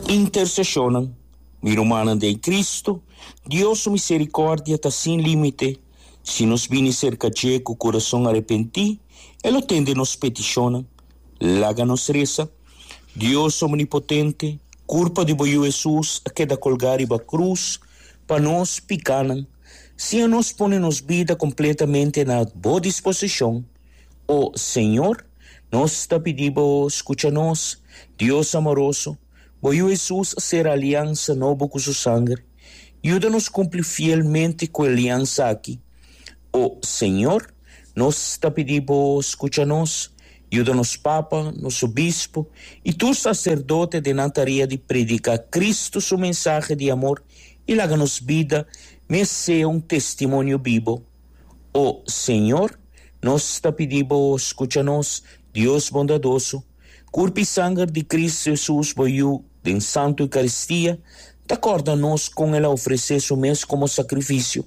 Intersesionnan, Mi rumannan den Cristo, Dios su misericordia ta sin limite. Si nos bini cerca dje cu curason arepenti, e lo tende nos peticionnan. Laga nos reza, Dios omnipotente, curpa di bo Yu Hesus a keda colga riba cruz pa nos picanan. Siña nos pone nos bida completamente na bo disposicion, O Señor, nos ta pidi Bo scucha nos. Dios amoroso, Bo y Jesus a cera aliansa nobo cu Su sanger. Yuda nos cumpli fielmente cu e aliansa aki. O Señor, nos ta pidi Bo scucha nos. Yuda nos papa, nos obispo y tur sacerdote den nan tarea di predica Cristo Su mensahe di amor y laga nos bida mes sea un testimonio bibo. O Señor, nos ta pidi Bo scucha nos, Dios bondadoso, curp i sanger di Cristo Jesus, Bo Yu, den Santo Eucaristia, ta corda nos con El a ofrece Su mes como sacrificio.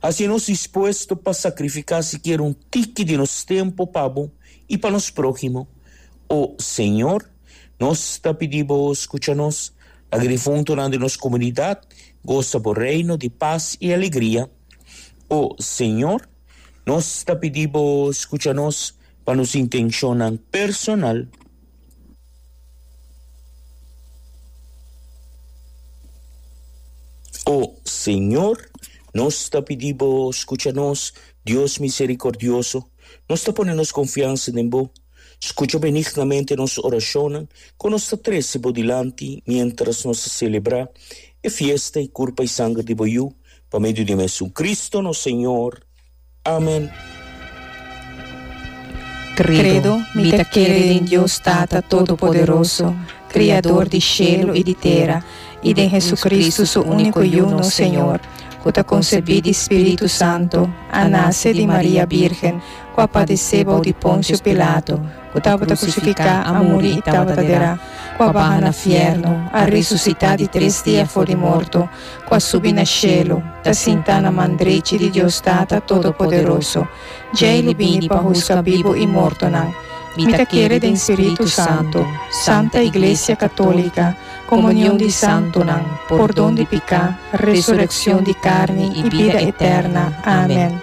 Asina nos dispuesto pa sacrifica sikier un tiki di nos tempo pa Bo i pa nos prohimo. O Señor, nos ta pidi Bo scucha nos, laga difuntonan di nos comunidad gosa Bo Reino di paz i alegria. O Señor, nos ta pidi Bo skucha nos pa nos intenshonnan personal. O Señor, nos ta pidi Bo skucha nos, Dios miserikordioso, nos ta pone nos konfiansa den Bo. Scucha benignamente nos oracionnan cu nos ta trece Bo dilanti mientras nos ta celebra e fiesta y curpa y sanger di Bo Yu, pa medio di Mesun Cristo nos Señor. Amen. Credo, Mi ta kere den Dios Tata Todopoderoso, Criador di shelu i di tera, i den Jesucristo, su unico Yu, nos Señor, cu ta concebi di Spiritu Santo, a nace di Maria Birgen, ku a padisé bou di Ponsio Pilato, ku tabata krusifiká, a muri i tabata derá, ku a baha na fièrnu, a resusitá di tres dia for di morto, ku a subi na shelu, ta sintá na man drechi di Dios Tata Todopoderoso. Djei lo bini pa huska bibu i mortonan. Mi ta kere den Spiritu Santu, santa iglesia katólika, komunion di santunan, pordon di piká, resurekshon di karni i bida etèrna. Amen.